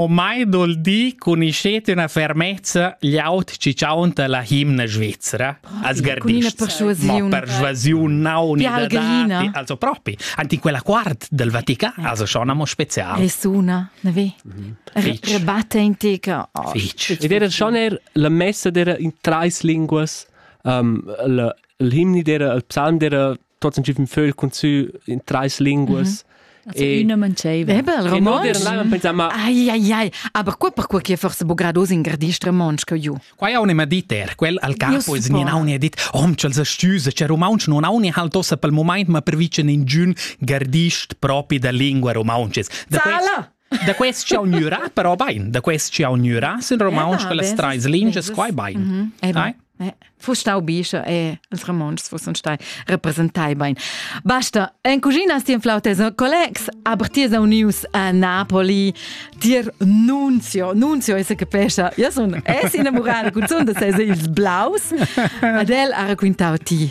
Ormai dol di cun ischet üna fermezza gl'aut chi chaunta la himna svizzera als gardists. Ma persuasiun nauni da dati, also propi, anti quella quart del Vatican, also schon amo spezial. Resuna, ne vi? Rebatte antica. Ed era schon er la messa dera in treis linguas, um, el himni dera, el psalm dera trotzdem giffen vögl cun sü in treis linguas Also üna manceva. Ebel, romontsch. Ai, ai, ai. Aber qua per quai che forse bogrados in gardist romontsch che ju. Qua ja un'ema dit er, quel al capo is nin auni dit, rom ch'els astüse, c'è romontsch non auni halt ossa pel moment, ma pervice in giun gardist propi da lingua romontsches. Zala! Da quest ch'jau gnürà però bain, da quest ch'jau gnürà sin romontsch quellas trais lingias quai bain. Mhm. Fu stau bischo e els romontschs fusson stai representai bain. Basta, en cucina stien flautes collegs, aber ti es unius a Napoli, dir Nunzio, Nunzio esse che pescia, io son es innamorada cun son da ses ils blaus, ad el ha raquintau ti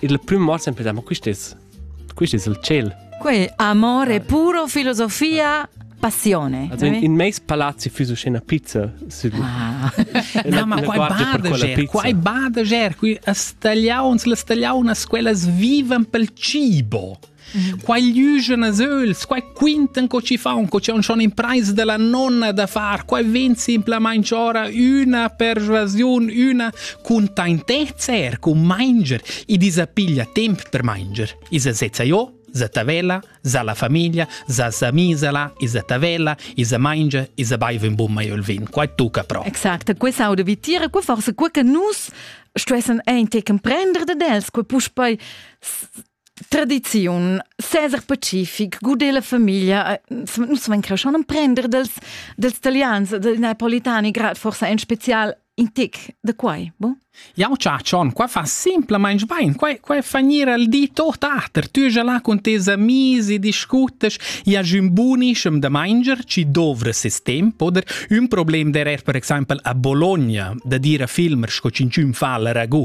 Il prüm mort sempre da ma quist es quist es il tschel. Que amore puro, filosofia, passione. Also in, in meis palazzi füs uschè pizza sü. Ah. Na, ma quai bardeger, quai bardeger, qui stagliauns, le stagliaunas, quellas vivan pel cibo. Quai liugen as öls, quai quintan co ci fan, co c'è schon impraisa della nonna da far, quai ven simplamaing ora üna persuasiun, üna cun taintezza er, cun manger, i disa piglia temp per manger. Isa sezza io, za tavella, za la famiglia, za sa misela, isa tavella, isa mangia, isa baiva un bun maiol vin, quai tucca pro. Exacte, questa aude vitira, qua forse qua che nus stuessen ein te comprender de dels, qua puspei tradiziun Cesar Pacific gude la famiglia nus van creschon emprender dels dels italians dei napolitani grad forsa in special in tic da quai bo Jau cia John, qua fa simplamain bain, qua, qua fa gnir al di tot ater, tu ja là con tes amis e discutas, ja jun bunischem da mainger, ci dovra ses temp, oder un problem der er per exaimpel a Bologna, da dire a filmer sco cinciun fa la ragu,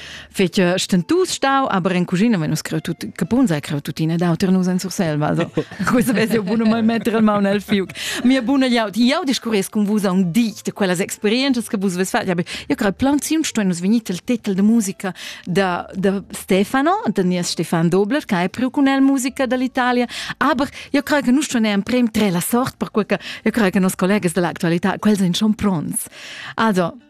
Fece stentus stau aber in cucina wenn us creu tut capun sei creu tuttina d'auter nus en Surselva also questa vese eu buno mal metter il maun al fiuc mia buna jaut jau discurres con vus a un di de quellas experiences che vus ves fat ja io creu plan sim sto nus venit il titel de musica da de Stefano de nies Stefan Dobler che hai priu con el musica dall'Italia aber io creu che nus sto ne prem tre la sort per quel che io creu che nos collegas dell'attualità quels in schon pronts also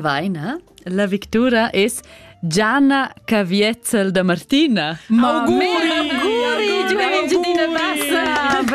Vaina, la victura es Gianna Caviezel da Martina. Ma auguri! Auguri! Giuventina Bassa! Brava!